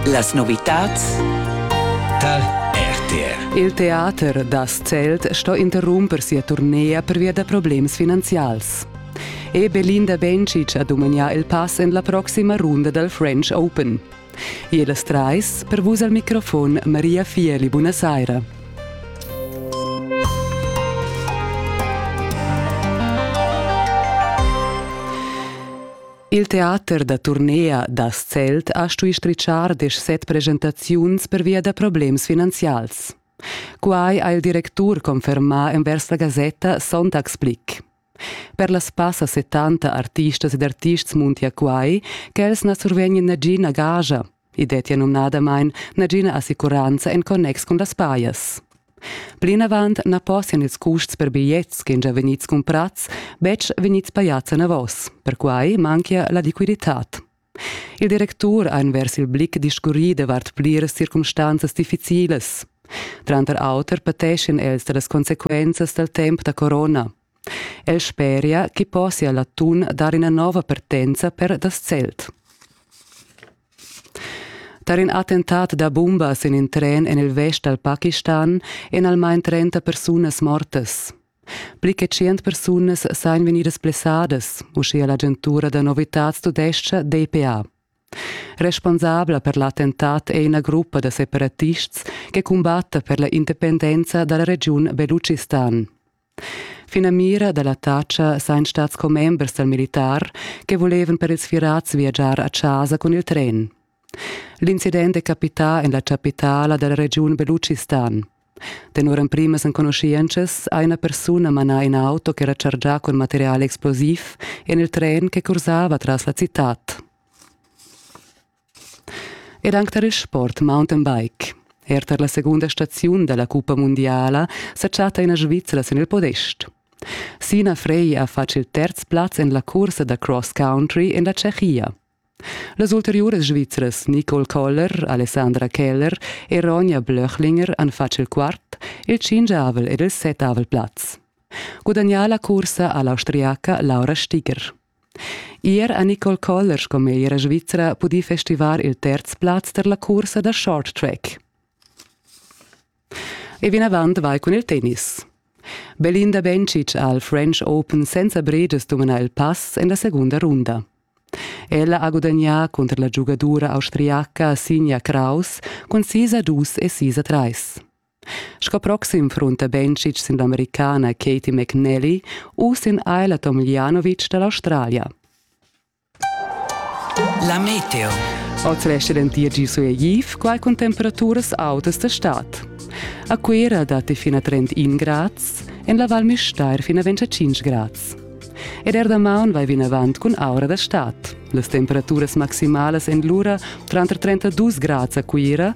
Las novitads tar RTR. Il teater da Zelt sto interrumper sia turnea pervia da problems finanzials. E Belinda Bencic ha dumagnà il pass en la proxima runda dal French Open. E las trais, per vus al microfon Maria Fieli, buonasera. Il teater da turnea da Zelt ha stui stritschar desch set presentaziuns pervia da problems finanzials. Quai ha il directur confermà envers la gasetta Sonntagsblick. Per las passa 70 artistas ed artists muntia quai ch'els na survegnan nagina gaja I dettia numnadamain nagina assicuranza en connex cun las pajas. Plinavant na possian ils custs per bigliets che già vegnids cumprads betg vegnids pajads enavos. Perquai manchia la liquiditad. Il directur ha envers il blick discurrì davart pliras circumstanzas difficilas. Tranter auter pateschien els da las consequenzas dal temp da corona. El speria chi possia l'atun dar üna nouva partenza per das Zelt. Tar in attentat da bumbas in in tren en il vest dal Pakistan èn almain 30 persunas mortas. Pli che 100 persunas sajan vegnidas blessadas, uschia l'agentura da novitads tudescha DPA. Responsabla per l'attentat è ina gruppa da separatists che cumbatta per la independenza dalla regiun Beluchistan. Finamira dalla taxa sain stats commembers dal militar che volevan per ils firats viagiar a chasa cun il tren. L'incident è capità en la chapitala della regiun Beluchistan. Tenor emprimas enconuschientschas ha una persona manà in auto che era chargià con materiale explosiv en il tren che cursava tras la città. Ed anc tar il sport mountainbike. Er tar la segunda staziun da la cuppa mundiala sa chatta ina Svizzera sin il podest. Sina Frey ha fatg il terz plaz en la cursa da cross country en la Tschechia. Las ulteriuras svizras Nicole Koller, Alessandra Keller e Ronja Blöchlinger han fatg il quart, il cingiavel ed il setavel plaz. Gudagnà la cursa ha l'Austriaca Laura Stiger. Ier ha Nicole Koller sco meglra svizra pudì festivar il terz plaz tar la cursa da short track. E vinavant vai cun il tennis. Belinda Bencic ha al French Open senza breges dumana il pass en la segunda runda. Ella ha gudagnà cunter la giugadura austriaca Sinja Kraus cun sis a dus e sis a trais. Sco proxim frunta Bencic sin l'Americana Katie McNally u sin Ajla Tomljanovic da l'Australia. La meteo. Oz resta dentir gi sueigiv, quai cun temperaturas autas d'estat. A Cuira datti fina 31 grads, en la Val Müstair fina 25 grads. Ed er damaun vai vinavant cun aura da stad. Las temperaturas maximalas en lura tranter 32 grads a Cuira